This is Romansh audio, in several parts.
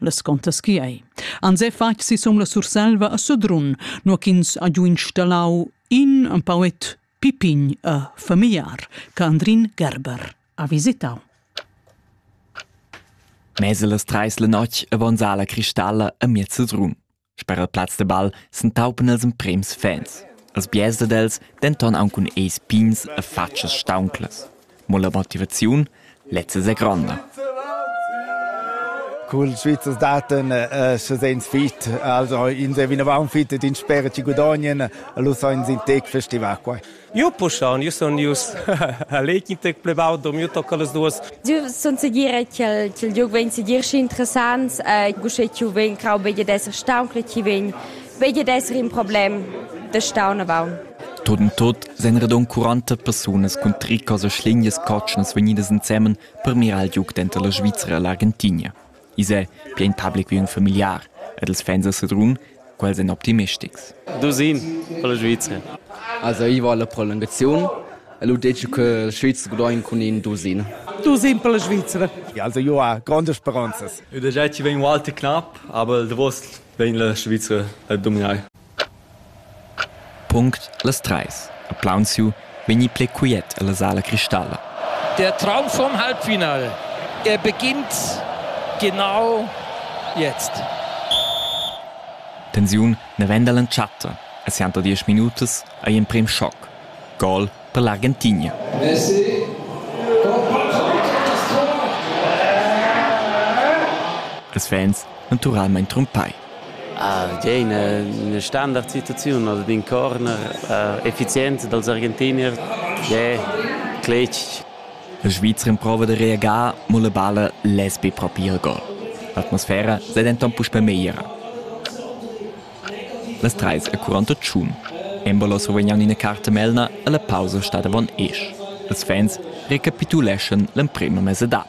las contas chi ei. Ans he fatg sisum la Surselva a Sedrun, no ch'ins ha giu installau in empauet pipign a familiar, Candrin Gerber, ha visitau. Mese las treis la notg a Gonzala Cristalla a miez Sedrun. Sper il plaz de ball s'entaupan els emprems fans, els biars dad els denton aunc cun eis pigns e fatschas staunclas. Mo la motivaziun, lezza è gronda. Cul Svizzers daten uh, se sens fit, also in se vinavant fit ed in spera ci gudagnien, lu sainz in tec festival quai. Io puschaun, io sun ius a l'Equintec plevau, do miu tocca las duas. Io sun segira ch'il liug vegn segir schi interessant, uschè ch'io vegn crau vegli d'esser staun, che chi vegn vegli d'esser in problem da staun avaun. Tot in tot sein radon 40 persunas cun tricas e schlignas cotschnas vegnidas ensemen per mirar il liug denter la Svizzera e l'Argentinia. I's è piain public ün familiar ed els fans a Sedrun, quels èn optimistics. Dusin per la Svizra. Also ich war la prolongazione e l'ho detto che la Schweiz gudogn cun in Dusin. Dusin per la Svizra. Also io ha grandes speranzas. Eu deja ci vegn un alter knapp, aber der Wurst vegn la Svizra a dominar. Punct las treis ha plaunsiu vegni pli quiet ella sala cristalla. Der Traum vom Halbfinale. Er beginnt genau jetzt. Tensiun navenda l'entschatta e sianta diesch minutas ei emprem schoc. Gol per l'Argentigna. Messi. Els fans naturalmein trumpai. Ah, tgei ina, ina standardsituaziun oder d'in corner äh, effizient dals Argentinier, ja, cletg. La Svizra improva da reagar, ma la balla less be propi il gol. L'atmosfera sei denton puspei megliera. Las treis e 41. Embolo survegnan ina carta melna e la pausa stat avon esch. Ils fans recapituleschan l'emprema mesadad.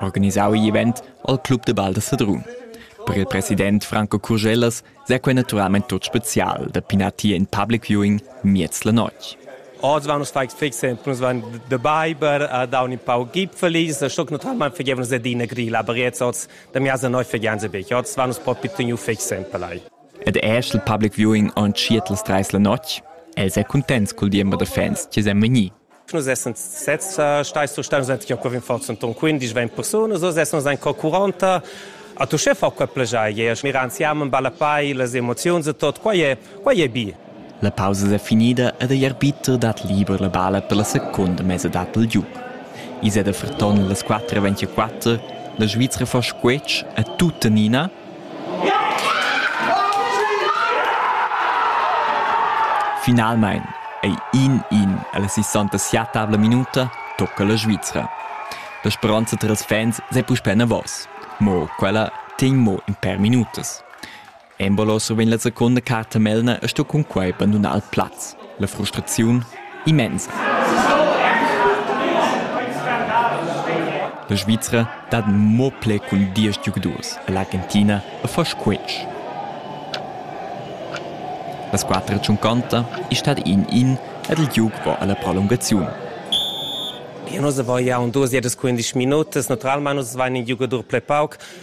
Organisau igl event al Club de Val da Sedrun. Per il president Franco Curgellas sei quei naturalmein tut special da pinar tier in public viewing miez la notg. Oz van nus fai fixen, nus van de Biber, a da un in pau gipfelis, a stoc naturalmein fegevon ze dina grila, aber jetzt oz, da mi asa neu fegen ze bec, oz van nus po pituniu fixen pelai. Ed eschel public viewing on tschietlas treis la notg, el sei contents cul diember de fans che sem vegni. Nus essans sezs stai surstai, nus enten quei rinforz en ton 15 20 persunas, nus essans en co 40 a tu chef quei plegier, mira ansiam en balapai las emoziuns e tot, quei è, quei è bi. La pausa è finida ed igl arbiter dat liber la bala per la secunda mesadad del giuc. Is è da Ferton las 4.24, la Svizra fa squetsch a tuttenina Finalmein ei in in ella sessantasettavla minuta tocca la Svizra. La speronza tras fans sei puspei enavos. Mo quella tegn mo in per minutas. Embolo survegn la secunda carta Melner e sto cun quei bandunar il plaz. La frustraziun immensa. La Svizra dat mo pli cun diesch giugadurs e l'Argentina a fas quinch. La squadra tschunconta è stata in in ed il giug va alla prolungaziun. Nus avain duas e dus quindisch minutas. Naturalmain nus avain in giugadur pli pauc.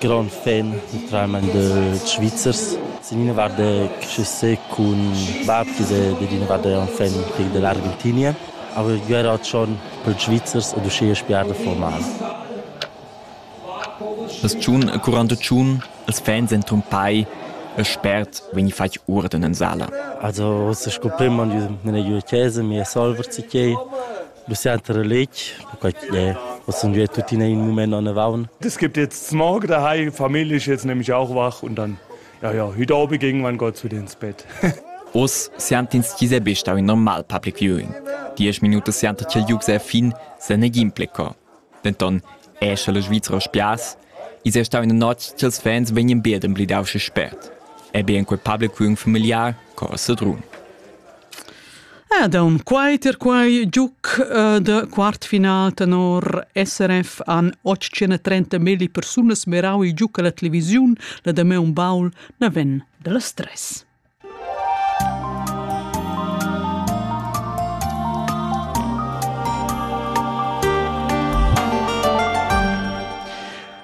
Grond fan naturalmein da Svizzers. Sin ina vart da Cressé cun bab che è dad ina vart un fan dell'Argentinia. Aber ich wäre halt schon per Schweizers oder schön spielen formal. Das tschun curando tschun, els fans en tumpai, e spert vegni fatg urden in sala. Also, es ist gut prima, wenn ich eine Chese, mir Solver zu gehen. Le centre letg, perquai chi'd è hoz ün via tuttina in mumaint anavaun. Es gibt jetzt Smog daheim, Familie ist jetzt nämlich auch wach und dann, ja, ja, heute Abend ging man Gott wieder ins Bett. Oz siantins chi s'è be stau in normal public viewing. Diesch minutas sianta ch'el giug se a fin, se negin pleco. Denton è sche la Svizra spias, is è stau ina notg ch'ils fans vegnien bead emblidau sche spert, e bien quei publicum familiar co a Sedrun. Ed aun quai ter quai giuc uh, de quartfinal tenor SRF an 830 milli persunas merau i giuc alla televisiun la de me un baul na ven de la stress.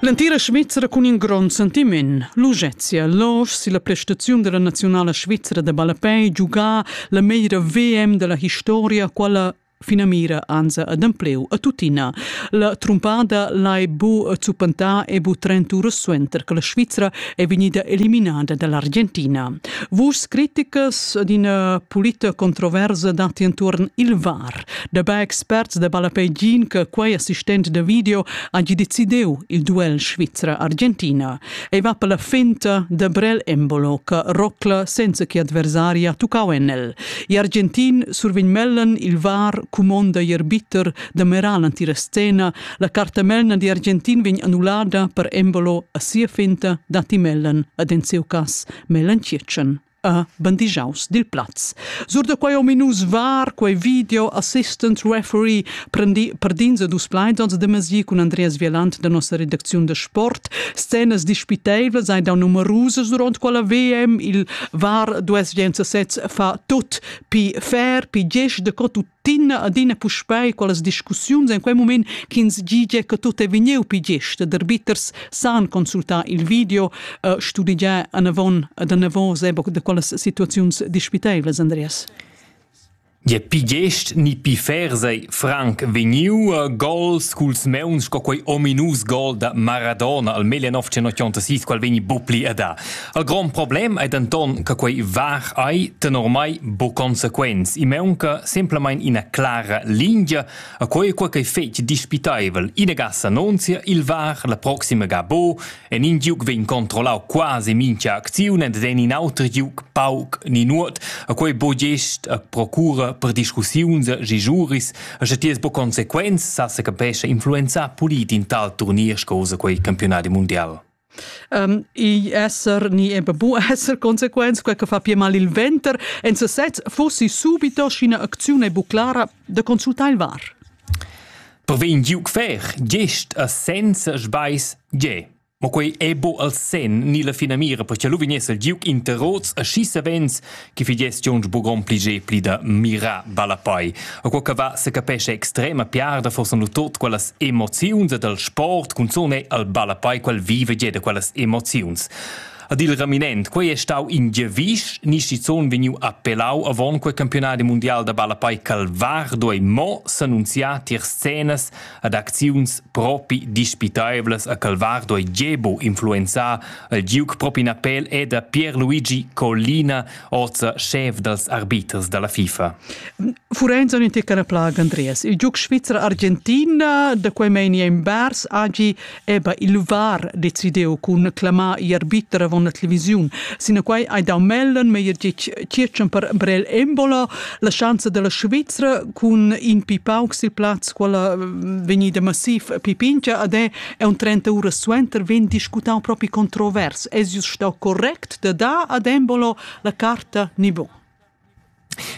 L'entira Svizra cun in grond sentiment. L'Ugezia Losch si la prestaziun della nazionala svizra de ballapei giugà la meglra VM della historia, quella finamira anza adempleu a tuttina. La trumpada lai bu zuppentà e bu trenturas suenter che la Svizzera è vegnida eliminada dall'Argentina. Vus criticas d'ina pulita controversa datti intorn il VAR. Dabei experts da Balapeggin che quei assistent da video ha giudiziu il duel Svizzera-Argentina. ei va per la finta de Brel Embolo che rocla senza che adversaria tuccau en el. I'argentin survegn mellen il var cumonda ier bitter de meral antirestena, la carta melna di Argentin vegn annullada per Embolo a sia finta dati mellen ad en seu cas mellen circen. a bandigiaus dil plaz. Sur da quei ominus var quei video assistant referee prendi perdins e dus plaids ons de mesi cun Andreas Vielant da nossa redacziun de sport. Scenas dispiteivlas ein da numerusas duront quella VM. Il VAR 216 fa tut pi fair, pi gest de co tut adina adina puspei quellas discussiuns en quei moment ch'ins gigie che tut è vegniu pi gest der bitters san consultar il video uh, studigiar anavon ad anavon seboc de quellas situaziuns dispiteilas Andreas Je pi gest ni pi fer sei franc vegniu a gols culs meuns sco quei ominus gol da Maradona al 1986 qual vegni bupli a da Il grond problem è denton che quei var ei tenor mei bu consequents. I maunca semplamein ina clara lingia a quei quei ch'ei fetg dispitaivel. Ina gas annunzia il var la proxima ga bo en in giug vegn controllau quasi mincha acziun ed en in auter giug pauc ni nuot. A quei bo gest a procura per discussiuns gi giuris a sche ti es bu consequents sa se capesce influenzar polit in tal turnier scosa quei campionati mundial. um, igl esser ni eben bu esser consequents quei che fa pia mal il venter en sesez fossi subito scina acziune bu clara de consultar il var Per vegn giuc fer gest a senza sbais ge Ma quei è bo al sen ni la finamira perché lu vignesse il giuc interrots a schi savens che fi gestiuns bugon pli ge pli da mira balla poi. A quo che va se capesce extrema piarda forse nu tot quellas emoziuns e dal sport cunzone al balla poi quel vive ge da quellas emoziuns. Ad il raminent, quei è stau in Gevisch, Nischizzon vegniu appellau avon quel campionat mundial da ballapai Calvardo e mo s'annunziar tier scenas ad acziuns propi dispitaivlas a Calvardo e Gebo influenzà il giug propi napel è da Pierluigi Collina, oza schef dals arbiters da la FIFA. Furenza un teccara plaga Andreas. Il giug svizzer-argentina da quei meini en Bars agi Eber il luvar decideu cun clamar i arbiter avon la televisiun. Sinaquai hai dau mellen meier circen per Brel Embola la schanza della Svizzera cun in pipauc sil plaz quella vegnida massiv pipincha ad è e un 30 ura suenter vegn discutau propi controvers. Es jus stau correct da dar ad Embolo la carta nivo?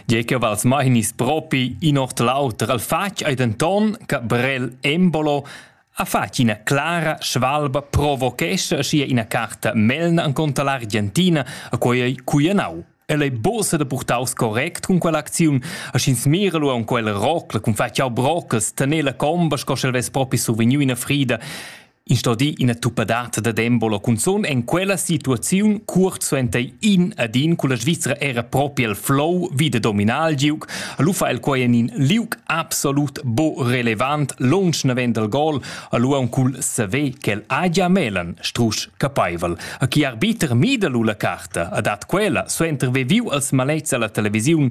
Tgei che vals mai hignis propi in ord l'auter. El fatg ei denton che Brel Embolo ha fatg ina clara svalba provochescha aschia ina carta melna encunter l'Argentina, a quei ei cuianau. El ei buca da purtaus correct cun quell'acziun, a sch'ins mira lu aunc quella rocla cun fatg jau brocas, tener la comba sco sch'el vess propi survegniu ina frida. In sto dir ina tuppadata da Dembola cunzun en quella situaziun cuort suenter in ad in culla Svizra era propi el flow vi de dominar il giug, lu fa el quei en in liug absolut bo relevant lunsch naven del gol, lu aun cul saver quel agia melen strusch capeivel. A chi arbiter mida lu la carta, a dat quella, suenter veviu als malets alla televisiun,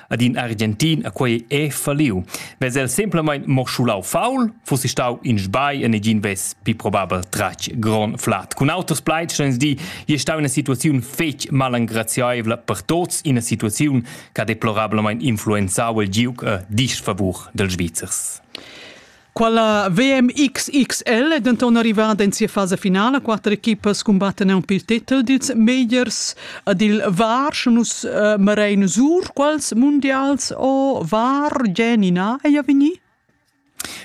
ad in Argentin a quei è falliu. Vez el semplamain morschulau faul, fussi stau in sbai e negin vess pi probabel tratg gron flat. Cun auters plaids ins di, je stau ina situaziun fetg malengraziaivla per tots, ina situaziun che ha deplorablamain influenzau il giuc a disfavur dels Svizzers. Quella VMXXL è denton arrivada en sia fasa finala. Quatter equipas cumbattan aunc pil titel dils megliers ed il VAR, sche nus uh, marein sur quals mundials o VAR Genina ei vegni?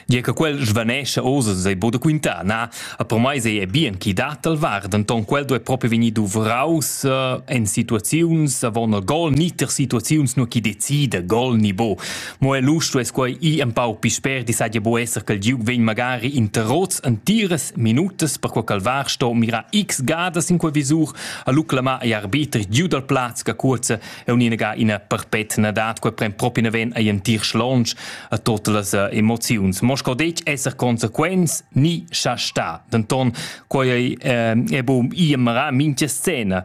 Gie che quel svanescha osa sei bu da quintar, na? A per mai sei è bien chi dat al var, denton quel do è proprio vegni duvraus uh, en situaziuns avon il gol, ni ter situaziuns nur chi decida gol ni bo. Mo el lu stuess quei i empau pi sper di saja buc esser che il giug vegn magari interrots entiras minutas per quei calvar sto mirar x gadas in quei visur a lu clamar agl arbiter giu dal plaz che curza e uninaga ina perpetna dat quei pren propi neven ei entir schlonch a tote las eh, emoziuns. Mo sco detg esser consequents ni scha sta. Denton quei ei eh, è bu i mara mincha scena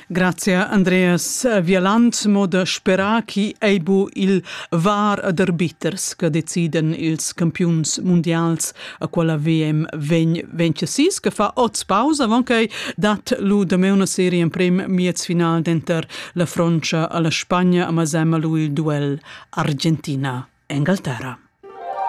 Grazia Andreas Vieland, mo da sperar chi ei bu il var d'arbiters che deciden ils campiuns mundials a quella VM vegn vencesis che fa oz pausa avon che dat lu da me una serie in prim miez final denter la Frontscha alla Spagna a Masema lu il duel Argentina Engalterra.